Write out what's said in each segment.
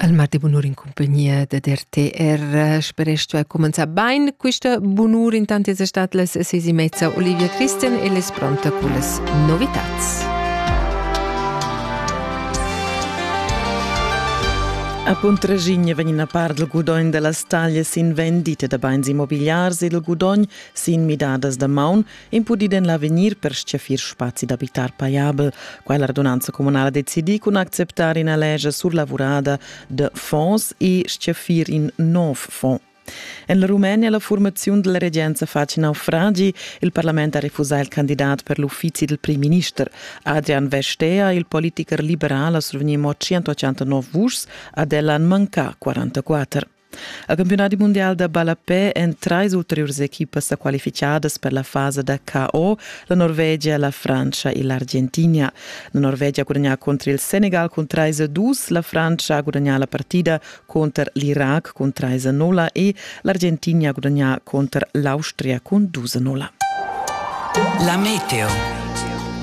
Al mat bunur in compagnia da DRTR speresch tu hai commenzà bain questa bunur intant es stat las ses e mezza Olivia Christian e les pronta con las novitats. A Puntraschigna vegn a part il gudogn da las taglias sin vendite da bains immobiliars ed il gudogn sin midadas da maun impudid en l'avegnir per stgaffir spazi d'abitar pajabel. Quella radunanza communala decidi cun acceptar ina lescha surlavurada de fonds e stgaffir in nov fond. En la Rumenia la formaziun della regenza face naufragi. Il parlament ha refusà il candidat per l'uffizi del primminister. Adrian Vestea, il politiker liberal, ha survegni mo 189 vuschs, ad ella manca 44. Il campiunadi mundial da ballapè èn trais ulteriurs equipas sa qualificadas per la fasa da KO, la Norvegia, la Frantscha e l'Argentina. La Norvegia ha gudagnà cunter il Senegal cun 3-2, la Frantscha ha gudagnà la partida cunter l'Irac cun 3-0 e l'Argentina ha gudagnà cunter l'Austria cun 2-0. La meteo.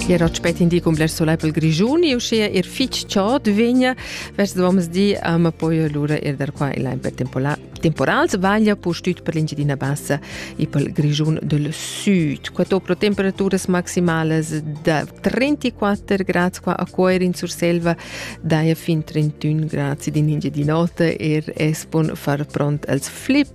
Ier ho spet indicum bler solai pel Grischun e uschea er fich chod vegna Vest doms di a ma poi lura er dar qua in per temporal sbaglia pustüt per l'Engiadina Bassa e pel Grischun del Süd. Quato pro temperaturas maximalas da 34 gradi qua a Coir in Surselva, daia fin 31 gradi in Engiadin'Ota er espon far pront als flip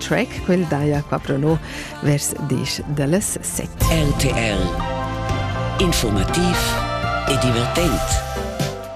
track, quel daja qua pro no vers disch da las set. RTL Informativ e divertent.